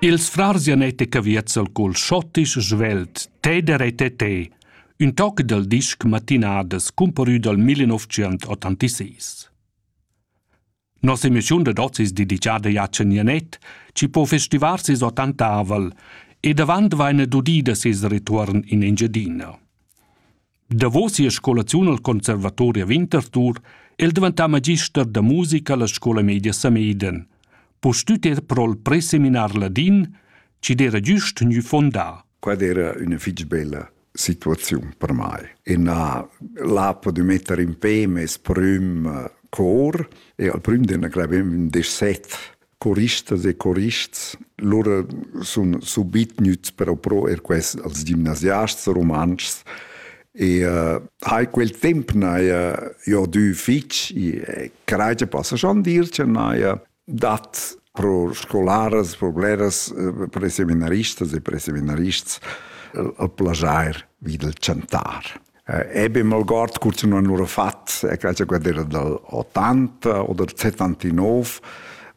Ils frars Janet e Caviezel col schottisch svelt Teder e Tete, ün toc dal disc Matinadas cumparü dal 1986. Nossa emissiun dad hoz es dedichada a Jan Janet, chi po festivar ses ottantavel e davant vaina dudida ses retuorn in Engiadina. Davos sia scolaziun al Conservatori a Winterthur è el daventà magister da musica alla scola media Sameden. Pustüt er pro'l preseminar ladin, chi'd era güst gnü fondà. Quella era üna fich bella situaziun per mai. E na, l'apo de mettere in pe mes prüm cor e al prüm de ne clavem un desset choristas e chorists lura sun subit gnüts però pro er quest als gimnasiasts rumantschs e uh, hai quel temp n'haja jo dü fich e craja passa schon dir che n'haja dat pro scolaras, pro bleras, eh, pro seminaristas e pro seminarists eh, al plajair vi del chantar. eh, ebem algord curzun han lura fat e quella guardera dal 80 o dal 79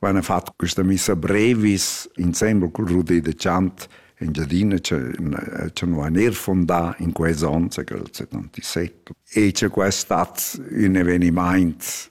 van fat questa missa brevis insembel col Rudé de Chant in Giadina c'è nu han er fondà in quei zon, c'è quel 77. E c'è quest stat un evenimaint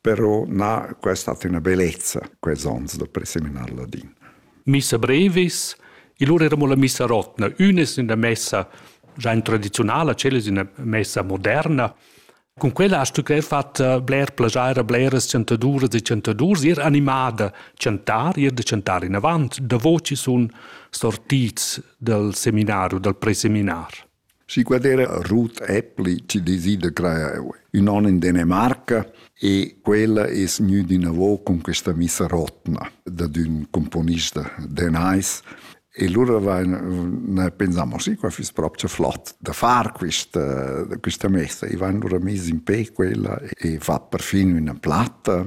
però na questa hat una bellezza quels ons da preseminar ladin. Missa brevis, il lur eramo la missa rotna, unes in la messa già in tradizionala, celes in la messa moderna. Con quella hast du gleich fatta bler plagiare a bleras chantaduras e chantadurs, ir animada chantar, ir da chantar in avant, da voci sun sortits dal seminario, dal preseminar. Si quadera Ruth Appli ci desida crear ün on in Danimarca e quella es gnüda inavo cun questa missa rotna dad ün componist de Nice e lura vain pensamo sì, qua füss propcha flot da far quista quista messa e vain lura mis in pe quella e fat perfin üna platta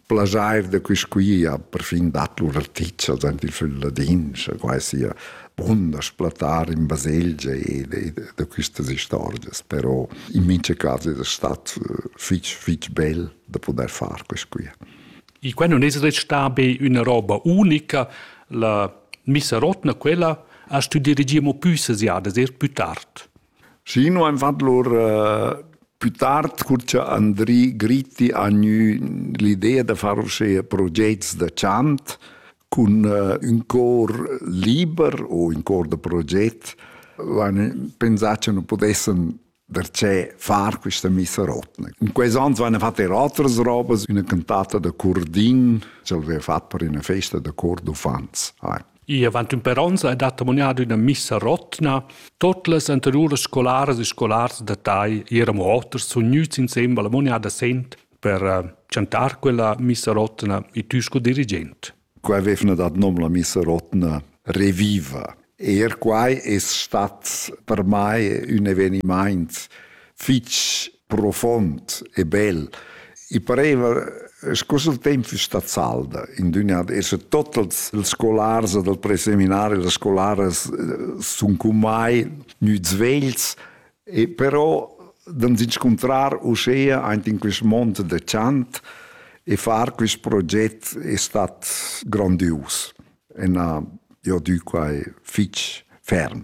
plaschair da quist quia perfin dat lur articha dent il fil ladin, scha quai sia bunda splatar in baselgia e da quistas istorgias, però in mincha cas es stat fich fich bel da pudair far quist quia. I quai non es restà be üna roba unica, la misarotna quella ha stü dirigir mo pü sesiadas, eir plü tard. Schi nu aim fat lur pü tard cur cha Andri Gritti ha gnü l'idea da far uschea progets da chant cun ün cor liber u ün cor da proget l'hain pensà cha nu pudessan darchè far quista missa rotna. In quels ans vaina fat eir otras robas, üna cantata da Curdin ch'el vaiva fat per üna festa da cor d'uffants. I avant ün per ons ha dat amuniato üna missa rotna. Tot las anteriuras scolaras e scolars da Tai eran oters sun gnüts insembel amuniada sent per eh, chantar quella missa rotna e tü sco dirigent. Qua avevna dat nom la missa rotna Reviva. Er quai es stat per mai ün evenimaint fich profond e bel. I pareva sco se il temp fiss stat salda in düna esa totals els scolars dal preseminari las scolaras sun con mai gnüts vegls e però d'ans inscuntrar uschea aint in quist mond da chant e far quist proget è stat grandius e n'ha jo dü quai fich ferm.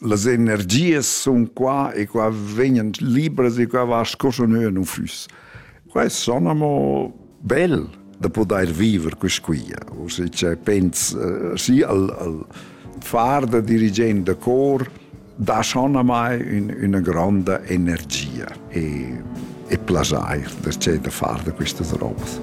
Las energias sun qua e qua vegnan libras e qua va sco scha nua nun füss. Quest son amo bel da pudair viver quist quia. Uschè che pens eh, schi al, al far da dirigent da cor dà schonamai ün, üna gronda energia e, e plaschair da, da far da quistas robas.